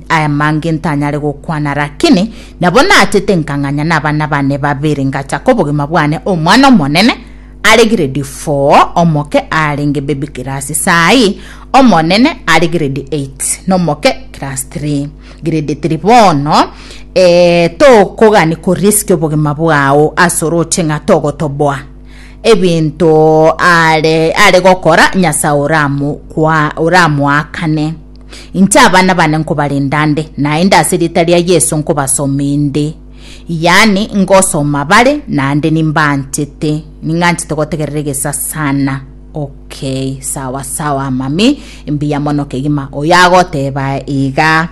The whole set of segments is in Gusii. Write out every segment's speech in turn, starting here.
Aya mange ntanyare gokwana, rakini nabo naachete nkang'anya nabana bane babere, ngachaka obogima bwane omwana omonene are grade 4, omoke arenge baby class saii, omonene are grade 8 nomoke class 3 grade 3 bono eh, tokogani koriski obogima bwao asoroche ng'a togotoboa ebinto are are gokora nyasae oramu kwa oramuakane Inche abana bane nkobarenda nde, naende ase rieta ria Yeso nkobasomie nde. Yaani, ngosoma bare, naende nimbaanchete. Ning'anchete gotegerera egesa sana. Okay, sawa sawa, mami. Mbuya mono kegima. Oyo agoteba iga.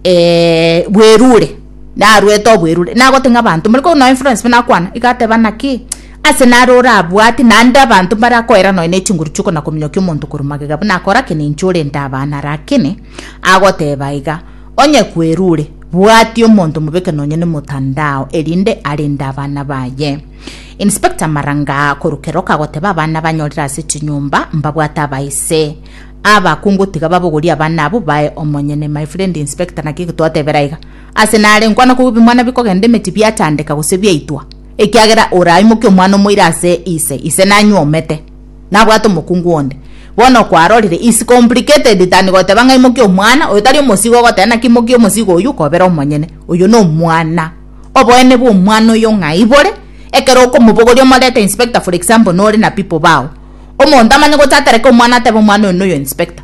Eh, bwerure. Narwete obwerure. Nagoteba ng'a abanto, more korwa nonya Florence buna akwana, iga ateba naki? Aase naro orabwate, naende abanto mbarakoera nonya ne chinguru chi'okona-kominyokia omonto korwa magega buna akorakena inche ore ntaabaa na rakene, agoteeba iga, Onye kwerure, bwatia omonto omobeke nonya ne motandao, erinde arinde abana baye. Inspector Maranga korwa Keroka agoteeba abana banyorire ase chinyomba mbabwate abaise abakungu tiga babogorie abana abwo bae omonyene. My friend Inspector naki egetwatebera iga, Aase nare nkwana kobua bimwana bikogenda emeti biachandeka gose biaitwa. Ekiagera oraimokie omwana omoira ase ise, ise nanyuomete, nabwate omokungu onde. Bono kwarorire, is complicated than goteba ng'a imokia omwana, oyo tari omosigo ogoteba naki imokia omosigo oyio kobera omonyene. Oyio nomwana. Oboene bwomwana oyio ng'ai bore? Ekero okomobogoria omorete inspector for example nore na people bao. Omonto amanye gocha atereke omwana atebe omwana oyo noyo inspector.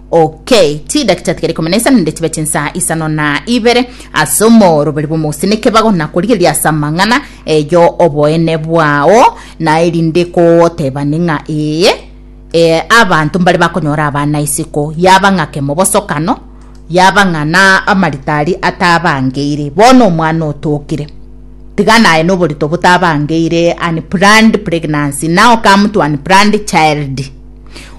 OK, chi dakika tiga rikomi na isano ninde chibe chinsaa isano na ibere ase omoroberi bw'omogusii nekebago, na korigereria ase amang'ana eyo oboene bwao, na erinde kogotebani ng'a ee, ee abanto mbare bakonyora abana isiko, yaba ng'a kemobosokano, yaba ng'a na amaritari atabangeire, bono omwana otokire tiga naye noborito botabangeire unplanned pregnancy now come to unplanned child.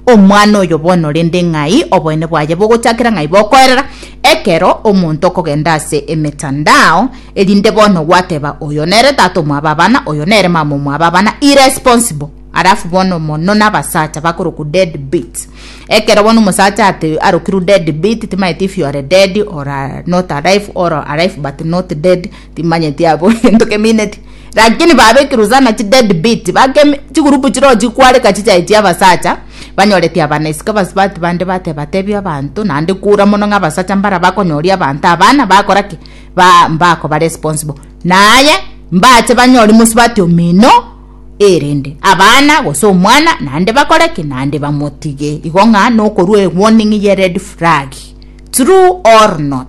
Omwana oyo bono orende ng'ai oboene bwaye bogochakera ng'ai bokoerera ekero omonto okogenda ase emetandao, erinde bono gwateba oyo nere tata omwabe abana, oyo nere mama omwabe abana, irresponsible. Alafu bono mono nabasacha bakorokwa dead beat. Ekero bono omosacha ate arokirwe dead beat timaeti if you are dead or are not alive or alive but not dead. Timanyeti abwo egento kemineti lakini babekirwe sana chi dead beat bakemi chigurupu chiroo chikwareka chichae chia abasacha banyoreti abana isiko abasubati bande bateba tebi abanto nande kura mono ng'a abasacha mbara bakonyoria abanto abana bakora ki ba mbakobare responsible naye mbache banyori mosubati omino erinde abana gose omwana nande bakore ki nande bamotige igo ng'a nokorua ewarning ye red flag true or not.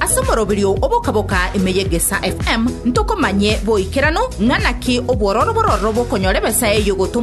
Ase omoroberio oboka-boka ime y'Egesaa FM ntokomanye boikeranu ng'a naki obwororo bororo bokonyora ebesa eyio gotomwa